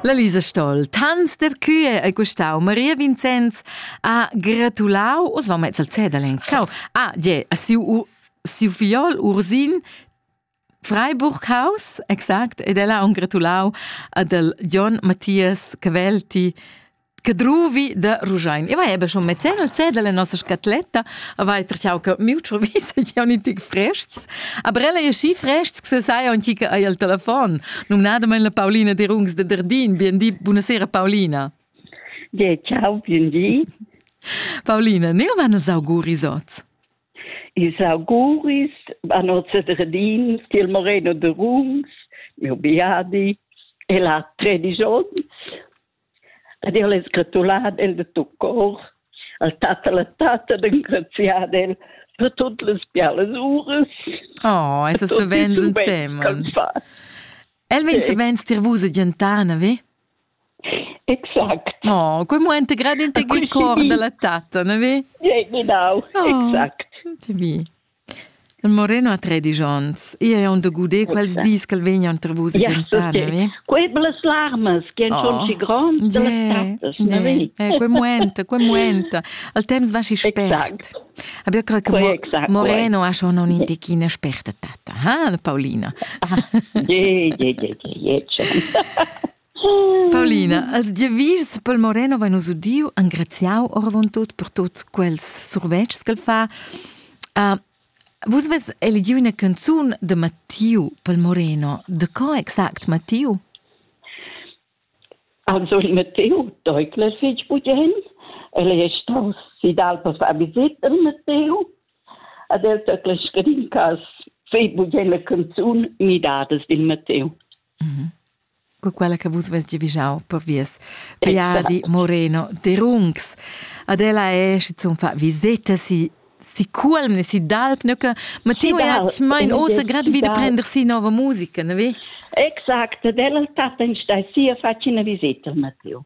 La Lisa Stoll, tants der Kühe e Gustau Maria Vincenz ha gratulau os va mezz al Zedel encau a je a siu siu fiol Ursin Freiburghaus, exact, ed ella ha un gratulau ad el Jon Matthias Cavelti Cadruvi de Ruschein. E vai, schon mezzeno il zedel la nostra scatletta, a vai trachau che miuccio visa che oni tic frests. Aber ella è schi frests che se sai on chica ai al telefon. Num nadament la Paulina de Rungs de Derdin. Bien di, buonasera Paulina. Ja, ciao, bien di. Paulina, ne van els auguris oz? Is auguris an oz de Derdin, Stil Moreno de Rungs, mio biadi, e la 13 ons. Ed el es gratulad el da tuot cor al tat e la tatta d'engraziar el per tuot las bialas uras. Oh, es savens instemma. El vegn savens dir vus a gentar, na ve? Exact. Oh, quel moment grad in te cor da la tatta, na ve? Ja, genau, oh, exact. Ti vi. Il Moreno ha tredisch onns. Io è on da guder quels dis ch'el vegnan tra vus yeah, tschentar, okay. navi? Quei las larmas che han oh. schon gronds yeah, las trattas, navi? Eh, quei muenta, quei muenta. Al temps va si spert. Exact. Aber ich credo Moreno ha schon un indichina sperta tata, ha, Paulina? Yeah, yeah, yeah, yeah, yeah, Paulina, als giavischs pel Moreno vain nus udiu engraziau oravontut per tuts quels survetschs ch'el fa. Uh, vus vess eligiu üna canzun de Mattiu pel Moreno. De co exact Mattiu? Also il Matteo deutlich fich bugen. El è stato sidal per far visita al Matteo ed el deutlich scrin cas fei bugen la canzun Midadas del Matteo. Mm -hmm. co quella che vus vess giavischau per vies Piadi Moreno de Rungs. Ad ella è schon fa visita si si culm si d'alp neuke ma ti hat mein ose grad wieder prender si nova musica ne vi Exact, della tata in sta sia facina visita Matteo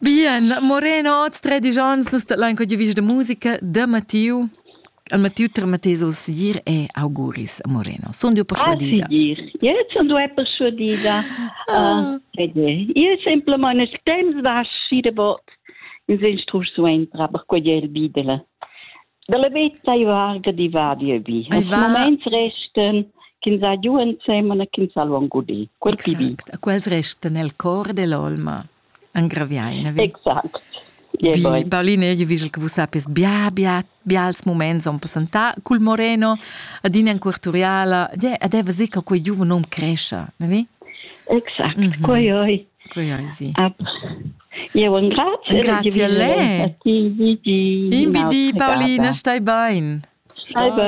Bien, Moreno, oz tredisch ans nus dat lain quegli vis de musica de Mattiu. Al Mattiu termates os gir e auguris a Moreno. Son dio persuadida. Gir. Io son du persuadida. Ah. Io simplement es temps vas si de bot in instrucziun aber quegli bidele. Dalla vetta i varga di va di vi. Als moments resten ch'ins ha giù insieme e ch'ins ha luongo di. Quel pibi. Quels resten nel cor dell'olma. Engraviai, ne? Exact. Bi, Paulin, io vigel che vus sappies bia, bia, bials moments on passentà cul Moreno, adina in Quarturiala, yeah, ed eva sì che quei giuven hom crescia, ne vi? Exact, mm -hmm. quei oi. Quei oi, sì. Ab. Eu engrazio. Grazie a lei. Imbidi, Paulina, stai bain. Stai bain.